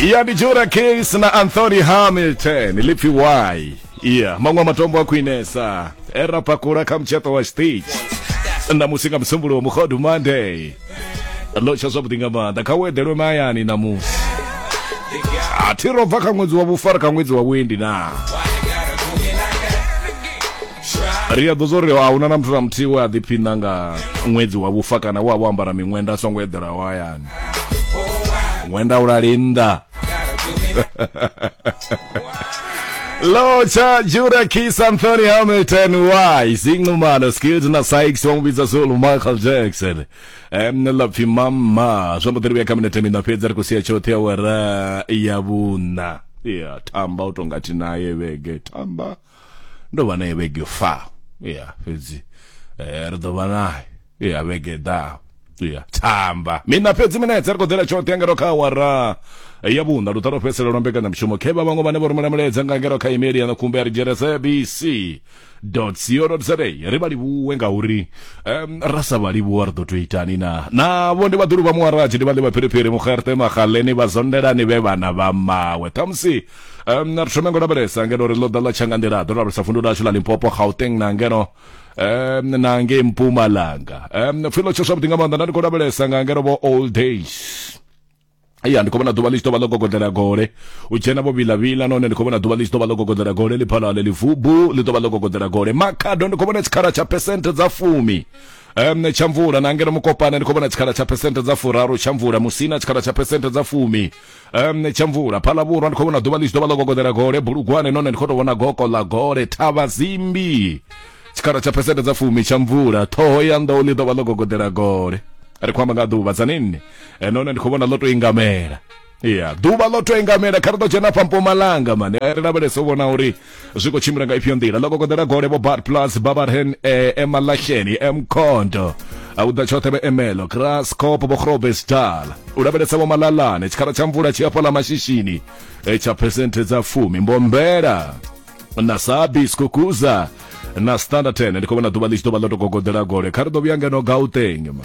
iya ndi jura case na anthony hamilton lipfi y iya maṅwe a matombo a khwinesa e ra pakula kha mutshato wa stage ṋamusi nga musumbuluwo mukhodu monday ḽo tsha zwavhuḓi nga maanḓa kha u eḓelwe mahayani ṋamusi a thi ro bva kha ṅwedzi wa vhufara kha ṅwedzi wa vhuendi naa ri a ḓo zwo ri a huna na muthu na muthihi we a ḓiphiṋa nga ṅwedzi wa vhufa kana we a vho ambara miṅwenda a songo eḓelaho hayani ṅwenda u lali nnḓa Locha Jura Kiss Anthony Hamilton Y Zingumano Skills na Sykes wa mubidza Zulu Michael Jackson em lapfi mama zwa mudiri vya cabinet mina fhedza ri khou sia tshoṱhe ya wara ya vhuna ya tamba u tonga thi naye vhege tamba ndo vha naye vhege fa ya fhedzi eh, ri ḓo vha naye ya vhege ḓaho ya thamba mina fhedzi minetse ri khou ḓela tshoṱhe ngero kha awara ya vhuṋa luṱa lwo fhedzisela lwa mbekanyamushumo khe vha vhaṅwe vhane vho rumela mulaedza nga ngero kha imeli ya na khumbe ya ri dzhia sabc co za ri vha livhuwe ngauri um, ra sa vha livhuwa ri ḓo tou itani na navho ndi vhaḓulu vha muwaraji ndi vha ḽi vha phiriphiri mugerte magaleni vha zondelani vhe vhana vha mawe ṱhamusi um na ri thome ngo lavhelesa ngeno ri ḽo ḓa ḽa tshanga nḓila ḓo lavhelesa vundu lashu ḽa limpopo gauteng na ngeno um na ngei mpumalanga um pfhi ḽo tsho zwavhuḓi nga maanḓa nda ndi khou lavhelesa nga ngeno vho old days ya ndi khou vhona ḓuvha ḽi tshi ḓo vha ḽo gogodela gole u dzhena vho vilavila nahone ndi khou vhona ḓuvha ḽi tshi ḓo vha ḽo gogodela gole ḽi phala ḽe ḽivubu ḽi ḓo vha ḽo gogodela gole makhado ndi khou vhona tshikhala tsha phesenthe dza fumi um tsha mvula na ngeno mukopane ndi khou vhona tshikhala tsha phesenthe dza furaru tsha mvula musina tshikhala tsha phesenthe dza fumi um tsha mvula phala vhurwa ndi khou vhona ḓuvha ḽi tshi ḓo vha ḽo gogoḓela gole bulugwane none ndi khou tou vhona goko ḽa gole thavha zimbi tshikhala tsha phesente dza fumi tsha mvula ṱhoho ya nḓou ḽi ḓo vha ḽo gogoḓela gole ri khou amba nga ḓuvha dza ninni Eh, none ndi khou vhona ḽo tou ingamela ya ḓuvha ḽo tou ingamela kha ri ḓo dzhena fha mpumalanga mane Eh, ri lavhelese u vhona uri zwi khou tshimbila nga ifhio nḓila ḽo kokoḓela gole vho bar plus babarhen eh, emalahleni emkhondo u ḓa tshoṱhe vhe emelo krascop vho grobesdal u lavhelesa vho malalane tshikhala tsha mvula tshi afho ḽa mashishini eh, tsha phesenthe dza fumi mbombela na sabi skukuza na standard 10 ndi khou vhona ḓuvha ḽi tshi ḓo vha ḽo to gogoḓela gole kha ri ḓo vhuya ngeno gauteng ma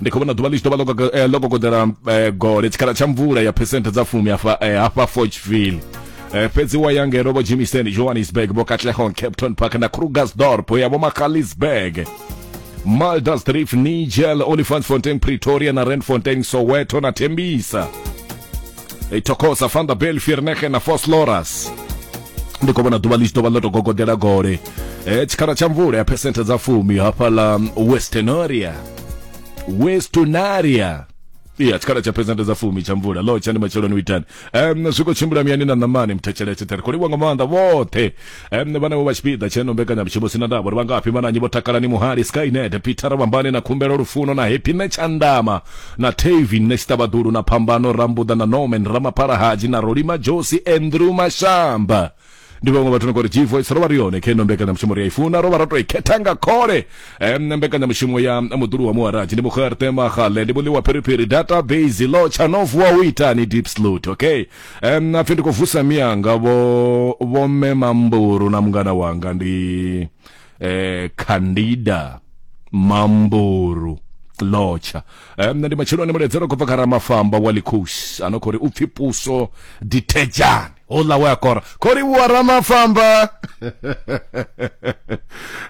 ndi khou vhona ḓuvha ḽi tshi ḓo vha ḽo eh, kokoḓela eh, gole tshikhala tsha mvula ya phesenthe dza fumi hafha eh, hafha forgeville Eh, fhedzi wa ya ngeno vho jimison johannesburg vho katlehong capton park na krugersdorp ya vho makalisburg maldersdrift nigel olifantsfontein pretoria na randfontein soweto na tembisa i tokosa fanda bel firnege na fos loras ndi khou vhona ḓuvha ḽi tshi ḓo vha ḽo tou gogodela gole eh, tshikhala tsha mvula ya phesenthe dza fumi hafhaḽa mm, westernoria westonaria iya tshikhala tsha phesenthe dza fumi tsha mvula lo tsha ndi matsheloni u itani um, zwi khou tshimbila miyani na ṋamani mthetsheletshe ṱhere khou livhuwa nga maanḓa vhoṱhe um, vhanevho vha tshipiḓa tsheno mbekanyamushumo sina ndavha uri vhangafhi vhananyi vho takalani muhali skynet peter vhambane na khumbelo lufuno na happy netshandama na tavin nesitabadulu na phambano rambuḓa na norman ramaphala haji na rolima josi andrew mashamba ndi vhaṅwe vhathu no kori g voice ro vha ri yone khe no mbekanyamushumo ri a i funa ro vha ro to i khetha nga khole um, mbekanyamushumo ya muḓulu wa muharaji ndi mukharte magale ndi muḽi wa phiriphiri database lo tsha no vuwa u itani deep slut okay Um, apfi ndi khou vusa miyanga vho vho mme mamburu na mungana wanga ndi eh Candida Mamburu lotsha um, ndi matsheloni muledzero khou bva kha ramafamba wa likhus ano khou ri u pfi puso ditejani hola we akora khou livhuwa ramafamba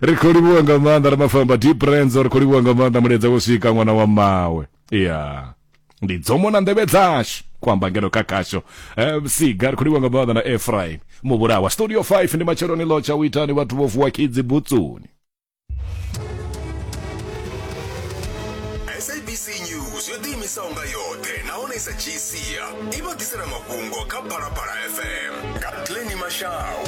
ri khou livhuwa nga maanḓa ramafamba deep renzo ri khou livhuwa nga maanḓa muledza wo swika ṅwana wa mawe ya ndi dzomo na nḓevhe dzashu ku amba ngeno kha khasho um, siga ri khou livha nga maanḓa na efraim muvhulawa studio 5 ndi matsheloni lotsha u itani vhathu vho vuwa khidzi butsuni sabc news yo ḓiimisaho nga yoṱhe nahone i sa dzhii sia i vha ḓisela mafhungo kha phalaphala fm nga tleni mashau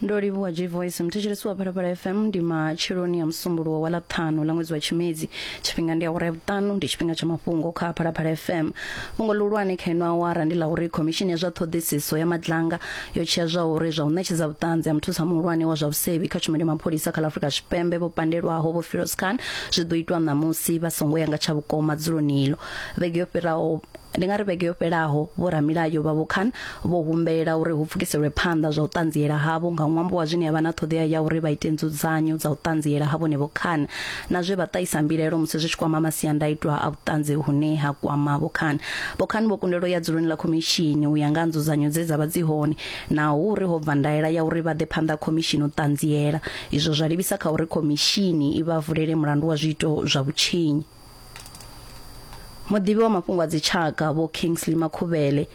ndo livhuwa g voice mthetshelesi wa phalaphala fm ndi matsheloni a musumbuluwo wa ḽaṱhanu ḽa ṅwedzi wa tshimedzi tshifhinga ndi awara ya vhuṱanu ndi tshifhinga tsha mafhungo kha phalaphala fm fhungo ḽihulwane kha ino awara ndi ḽa uri khomishini ya zwa ṱhoḓisiso ya madlanga yo tshea zwa uri zwa u ṋetshedza vhuṱanzi ha muthusa muhulwane wa zwa vhusevhi kha tshumelo ya mapholisa kha ḽa afurika tshipembe vho pandelwaho vho firoz khan zwi ḓo itwa ṋamusi vha songo ya nga tsha vhukoma dzuloni ilo vhege yo fhiraho Ndi nga ri vhege yo fhelaho vhoramilayo vha Vhokhan vho humbela uri hu pfukiselwe phanḓa zwa u ṱanziela havho nga ṅwambo wa zwine ya vha na ṱhoḓea ya uri vha ite nzudzanyo dza u ṱanziela ha vhone Vhokhan na zwe vha ṱahisa mbilaelo musi zwi tshi kwama masiandaitwa a vhuṱanzi hune ha kwama Vhokhan. Vhokhan vho kundelwa u ya dzuloni ḽa khomishini u ya nga ha nzudzanyo dze dza vha dzi hone na uri ho bva ndaela ya uri vha ḓe phanḓa ha khomishini u ṱanziela. Izwo zwa livhisa kha uri khomishini i vha vulele mulandu wa zwiito zwa vhutshinyi. muḓivhi wa mafhungo a dzitshaka vho kingsley makhuvhele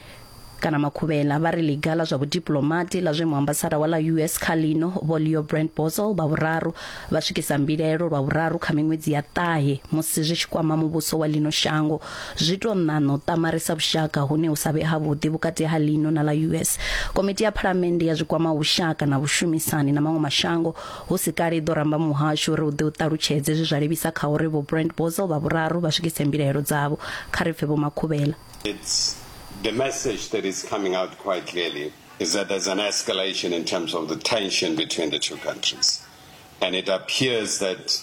kana makhuvhela vha ri ḽiga ḽa zwa vhudiplomati ḽa zwe muambasada wa ḽa us kha lino vho leo brand bosel vha vhuraru vha swikisa mbilaelo lwa vhuraru kha miṅwedzi ya ṱahe musi zwi tshi kwama muvhuso wa lino shango zwi to ṋaṋo ṱamarisa vhushaka hune hu sa vhe havhuḓi vhukati ha lino na ḽa us komiti ya phalamennde ya zwikwama vhushaka na vhushumisani na maṅwe mashango Hu si kale i ḓo ramba muhasho uri u ḓe u ṱalutshedze zwe zwa livhisa kha uri Vho Brent Bozell vha vhuraru vha swikise mbilaelo dzavho. Kha ri pfe Vho Makhuvhela. It's the message that is coming out quite clearly is that there's an escalation in terms of the tension between the two countries and it appears that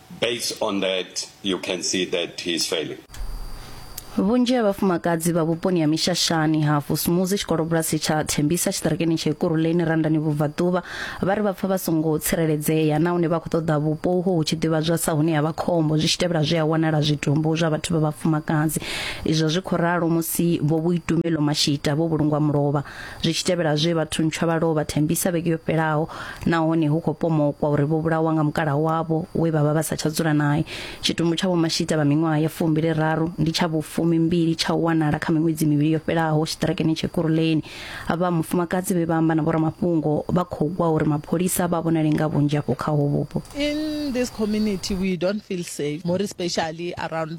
Based on that, you can see that he's failing. vhunzhi ha vhafumakadzi vha vhuponi ha mishashani ha fusumuzi tshikolobulasi tsha thembisa tshiṱirakeni tsha ikuruleni randani vhubvaḓuvha vha ri vha pfa vha songo tsireledzea nahone vha khou ṱoḓa vhupo uho hu tshi ḓivhadzwa sa hune ha vha khombo zwi tshi tevhela zwi a wanala zwitumbu zwa vhathu vha vhafumakadzi izwo zwi khou ralo musi vho vhuitumelo mashita vho vhulungwa mulovha zwi tshi tevhela zwe vhathu ntswa vha lovha thembisa vhege yo fhelaho nahone hu khou pomokwa uri vho vhulawa nga mukala wavho we vha vha vha sa tsha dzula naye tshitumbu tsha vhomashita vha miṅwaha ya fumbili raru ndi tsha vhufumi mbili tsha u wanala kha miṅwedzi mivhili yo fhelaho tshiṱirakeni tshe kuruleni vha mufumakadzi vhe vha amba na vhoramafhungo vha khou gwa uri mapholisa vha vhonale nga vhunzhi afho kha ho vhupo in this community we don't feel safe more especially around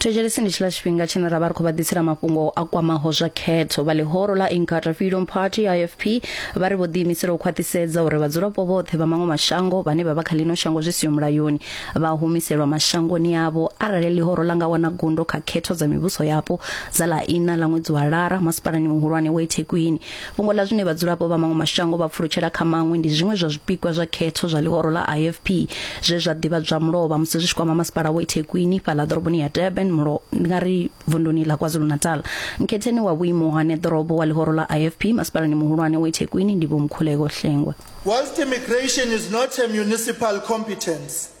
Thetshelesi ndi tshiḽa tshifhinga tshine ra vha ri khou vha ḓisela mafhungo a kwamaho zwa khetho. Vha ḽihoro ḽa Inkatha Freedom Party, IFP, vha ri vho ḓiimisela u khwaṱhisedza uri vhadzulapo vhoṱhe vha maṅwe mashango vhane vha vha kha ḽino shango zwi siho mulayoni vha humiselwa mashangoni avho arali ḽihoro ḽa nga wana gundo kha khetho dza mivhuso yapo dza ḽa iṋa ḽa ṅwedzi wa Lara masipalani muhulwane wa iThekwini. Fhungo ḽa zwine vhadzulapo vha maṅwe mashango vha pfulutshela kha maṅwe ndi zwiṅwe zwa zwipikwa zwa khetho zwa ḽihoro ḽa IFP zwe zwa ḓivhadzwa mulovha musi zwi tshi kwama masipala wa iThekwini fhaḽa ḓoroboni ya Durban mulo ndi nga ri vunduni ḽa KwaZulu-Natal. Mkhetheni wa vhuimo ha neḓorobo wa ḽihoro ḽa IFP masipalani muhulwane wa iThekwini ndi Vho Mkhuleko Hlengwa. Whilst immigration is not a municipal competence,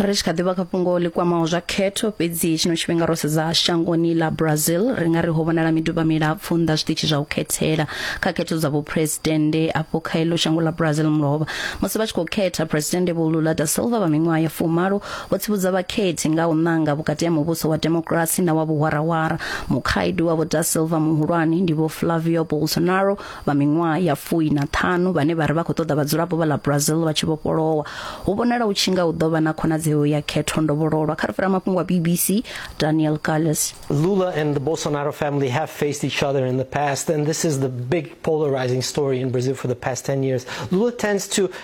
ri tshi kha ḓivha kha fhungo ḽi kwamaho zwa khetho fhedzi tshino tshifhinga ro sedza shangoni ḽa brazil ri nga ri ho vhonala miduba milapfu nnḓa zwiṱitshi zwa u khethela kha khetho dza vhuphuresidennde afho kha ilo shango ḽa brazil mulovha musi vha tshi khou khetha phuresidennde vho lula da silva vha miṅwaha ya fumalo O tsivhudza vhakhethi nga u ṋanga vhukati ha muvhuso wa demokirasi na wa vhuhwarahwara. Mukhaedu wa Vho Da Silva muhulwane ndi Vho Flavio Bolsonaro vha miṅwaha ya fui na ṱhanu vhane vha ri vha khou ṱoḓa vhadzulapo vha ḽa Brazil vha tshi vhofholowa. Hu vhonala hu tshi nga hu ḓo vha na khonadzeo ya khetho ndovhololwa kha ri fhira mafhungo a BBC Daniel Calles. Lula and the Bolsonaro family have faced each other in the past and this is the big polarizing story in Brazil for the past 10 years. Lula tends to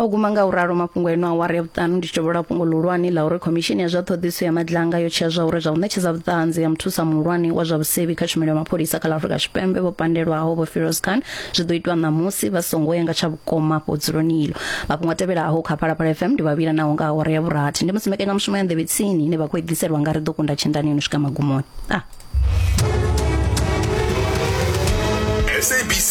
O guma nga u ralo mafhungo eno awara ya vhuṱanu ndi tshi tovhola fhungo ḽihulwane ḽa uri khomishini ya zwa ṱhoḓisiso ya madlanga yo tshea zwa uri zwa u ṋetshedza vhuṱanzi ya muthusa muhulwane wa zwa vhusevhi kha tshumelo ya mapholisa kha ḽa Afrika Tshipembe vho pandelwaho vho Firoz Khan zwi ḓo itwa ṋamusi vha songo ya nga tsha vhukoma afho dzuloni iḽo mafhungo a tevhelaho kha Phalaphala FM ndi vhavhila naho nga awara ya vhurathi ndi musi mbekanyamushumo ya nḓevhe tsini ine vha khou i ḓiselwa nga ri ḓo kunda tshendani yo no swika magumoni ah. SABC